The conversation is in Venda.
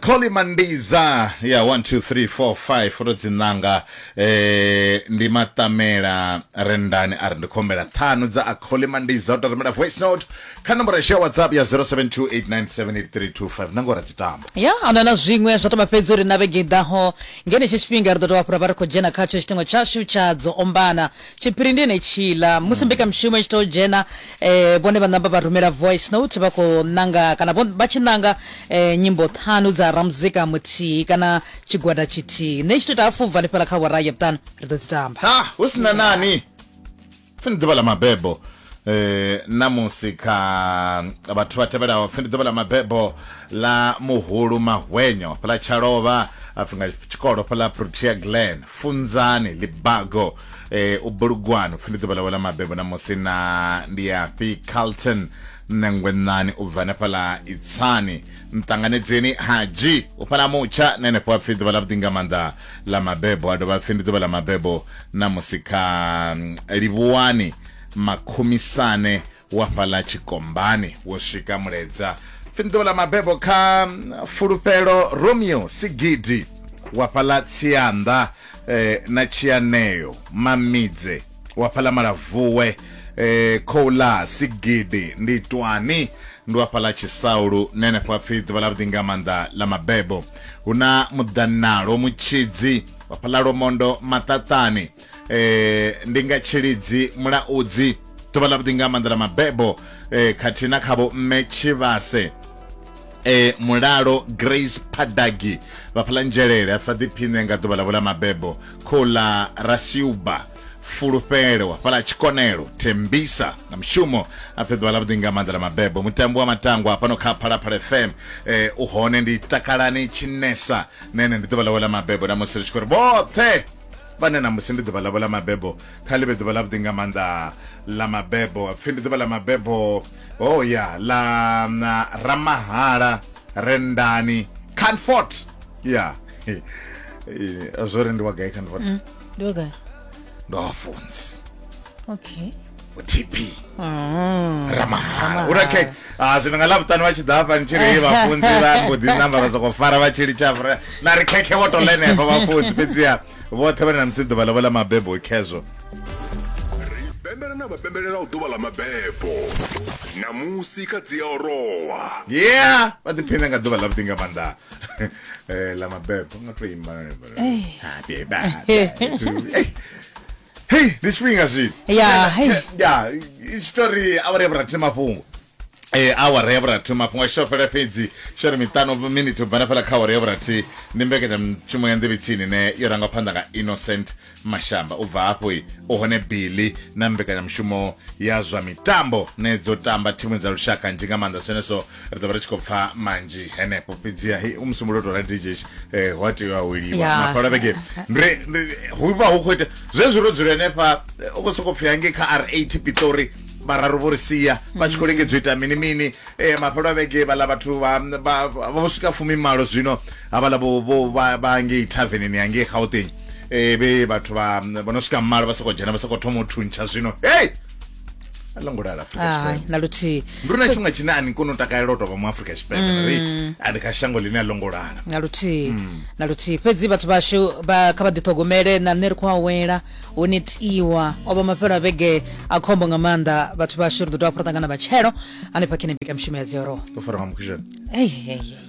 Colly Mandiza ya 12345 foto dzi ṋanga eh, ndi maṱamela rendani a ri ndi khombela ṱhanu dza a Colly Mandiza u to rumela voice note kha nomboro yashu ya whatsapp ya 0728978325 na ngora dzi tamba ya ana na zwiṅwe zwa tamba fhedzi uri na vhege i ḓaho ngenetsho tshifhinga ri ḓo tovha fhura vha ri khou dzhena khatsho tshitengo tshashu tsha dzo ombana tshiphiri ndi enetshila musi mbekamishumo i tshi tou dzhena eh, vhone vha namba vha rumela voice note vha khou ṋanga kana vha tshi ṋanga eh, nyimbo ṱhanu dza ramuzika muthihi kana tshigwada tshithihi nṋe tshi to ita hafu ubva fhala kha wara ya vhuṱanu ri ḓo dzi tamba ha hu si na nani pfi ndi ḓuvha ḽa mabebo eh namusi kha vhathu vha tevhelaho pfi ndi ḓuvha ḽa mabebo ḽa muhulu mahwenyo fhala tshalova apfi nga tshikolo fhala protea glen funzani libago eh, u bulugwani upfi ndi ḓuvha ḽawe ḽa mabebo na musi na ndi ya fi carlton nṋengwenani u bva hanefhaḽa itsani nṱanganedzeni hadzhi u fhala mutsha na henefho a pfi ḓuvha ḽa vhuḓi nga maanḓa ḽa mabebo a dovha pfi ndi ḓuvha ḽa mabebo na musi kha mm, livhuwani makhumisane wa fhaḽa tshikombani wo swika muledza pfi ḓuvha ḽa mabebo kha mm, fulufhelo romeo sigidi wa fhaḽa tsianḓa eh, na tshianeo mamidze wa fhaḽa malavuwe eh, khoula sigidi ndi twani ndi wa fhaḽa tshisaulu na henefho pfi ḓuvha ḽa vhuḓi nga maanḓa ḽa mabebo hu na muḓanalo mutshidzi wa fhaḽa lomondo maṱaṱani eh ndi nga tshilidzi mulaudzi ḓuvha ḽa vhuḓi nga maanḓa ḽa mabebo eh khathihi na khavho mme tshivhase eh mulalo grace padagi vhaphalanzhelele a fa ḓiphine nga ḓuvha ḽa vhula mabebo khola rasiuba fulufhelo wa fhala tshikonelo thembisa nga mushumo a pfhe ḓuvha ḽa vhuḓi nga maanḓa ḽa mabebo mutambo wa matango hafhano kha phalaphala fm eh u hone ndi takalani tshinesa nene ndi ḓuvha ḽawe ḽa mabebo na musi ri tshi khou ri vhoṱhe vhane ṋamusi ndi ḓuvha ḽavho ḽa mabebo kha ḽi vhe ḓuvha ḽavhuḓi nga maanḓa ḽa mabebo pfhi ndi ḓuvha ḽa mabebo o ya ḽa na ramahala rendani canfort ya zwo ri ndi wa gai canfort mm, ndi wa gai ndo funzi okay tp Mm. ramahala uri okay ah, zwino nga ḽavhuṱanu vha tshi ḓa hafha ni tshi ri vhafunzi vha mbo ḓi namba vha soko fara vha tshi litsha vhura na ri khekhe vho to lenefha vhafunzi fhedziha vhoṱhe vha ne na musi ḓuvha ḽavho ḽa mabebo khezwo ri pembela na vha pembelela u ḓuvha ḽa mabebo namusi kha dzi a orowa yeah vha ḓiphina nga ḓuvha ḽavhuḓi nga maanḓa Eh, ḽa mabebo nga to imba Happy birthday to you. Eh, hei ndi tshifhinga zwino Ya, hei. ya tshitori awara ya vhurathi mafhungo Eh, awara ya vhurathi mafhungo a shofela fhedzi shori miṱanu miniti u bva na fhala kha awara ya vhurathi ndi mbekanyamushumo ya nḓevhitsini ine yo rangwa phanḓa nga innocent mashamba u bva hafho i u hone billy na mbekanyamushumo ya zwa mitambo ne dzo tamba thimu dza lushaka nzhi nga maanḓa zwenezwo ri ḓo vha ri tshi khou pfa manzhi henefho fhedziha he u musumbulo tou rali dj eh, hu a tea u aweliwa Ya. mafhala vhege Ndi- ndi- hu vha hu khou ita zwezwi ro dzula henefha eh, u khou sokou pfhi hangei kha r eight pitori vhararu vho ri sia vha tshi khou lingedza u ita mini mini eh, mafhelo a vhege vhaḽa vhathu vha- vha- vha- vho swika fumi malo zwino havhaḽa vho- vho- vha vha ngei tavernini yangei gauteng eh, vhe vhathu vha vho no swika malo vha sokou dzhena vha sokou thoma u thuntsha zwino hei a ḽo ngo lala afrika Hai, tshipembe na luthihi ndi uri na tshifhinga tshine a ni koni u takalela u tovha mu afrika tshipembe Mm. ri a ndi kha shango ḽine a ḽo ngo lala na luthihi Mm. na luthihi fhedzi vhathu vhashu vha kha vha ḓithogomele na nṋe ri khou awela hu netiwa o vha mafhelo a vhege a khombo nga maanḓa vhathu vhashu ri ḓo dovha hafhu ra ṱangana vhatshelo hanefha khe ni bika mishumo ya dzioroho to fara nga mukhishani Hey, hey, hey.